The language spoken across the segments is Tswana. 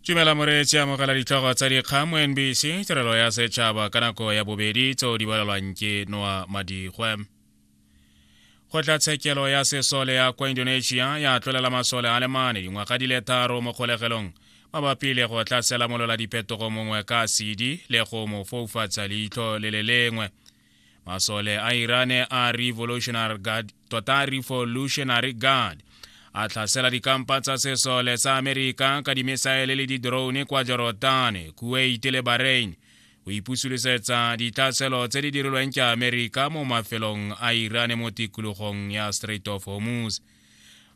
tumela moreetsi amogela ditlhogo tsa dikgang mo nbc tirelo ya setšhaba ka nako ya bobedi tseo di balelwang ke noa madigwe kgotlatshekelo ya sesole ya kwa indonesia ya tlolela masole a le mane dingwaga di le tharo mo kgolegelong mabapi le go tla selamolola diphetogo mongwe ka sedi le go mo foufatsa leitlho le le lengwe masole a irane a revolutionary guard tota revolutionary guard a tlhasela dikampa tsa sesole sa amerika ka dimisaele le didrone kwa jorodane kuwait le bahrain o ipusulisetsa ditlhaselo tse di dirilweng ke amerika mo mafelong a irane mo tikologong ya strait of hormuz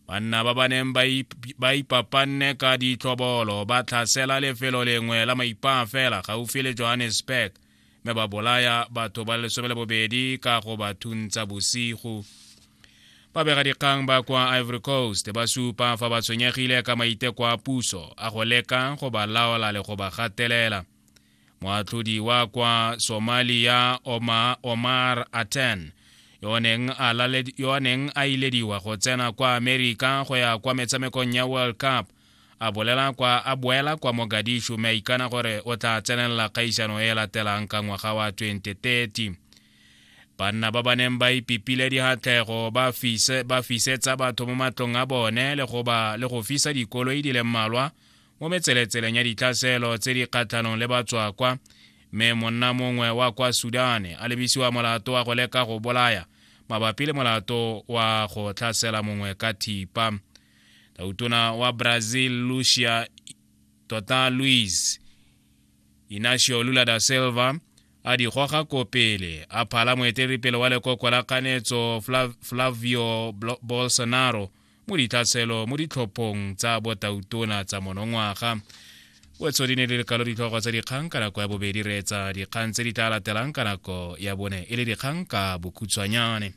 banna ba ba neng ba ipapanne ka ditlhobolo ba tlhasela lefelo lengwe la maipaa fela gaufi le johannesburg mme ba bolaya batho ba lesome le bobedi ka go ba thuntsa bosigo babegadikgang ba kwa ivory coast ba supa fa ba tshwenyegile ka maiteko a puso a go leka go ba laola le go ba gatelela moatlhodi wa kwa somalia omar, omar aten yo a neng a ilediwa go tsena kwa amerika go ya kwa metshamekong ya world cup a bolela kwa a boela kwa mogadishu mme a ikana gore o tla tsenelela kgaisano e e latelang ka ngwaga wa 2030 banna ba ba neng ba ipipile dihatlego ba fise ba fisetsa batho mo matlong a bone le go ba le go fisa dikoloi di le mmalwa mo metseletseleng ya ditlhaselo tse di kgatlhanong le batswakwa mme monna mongwe wa kwa sudane a lebisiwa molato wa go leka go bolaya mabapi le molato wa go tlhasela mongwe ka thipa na utona wa Brazil Lucia Tota Luis Inacio Lula da Silva a di goga ko pele a phala moeteledipele wa lekoko la kanetso Flavio Bolsonaro mo ditlhatselo mo ditlhophong tsa botautona tsa monongwaga wetso di ne le lekalo ditlhogo tsa dikgang ka nako ya bobedi reetsa dikgang tse di tla latelang ka nako ya bone e le dikgang ka bokhutshwanyane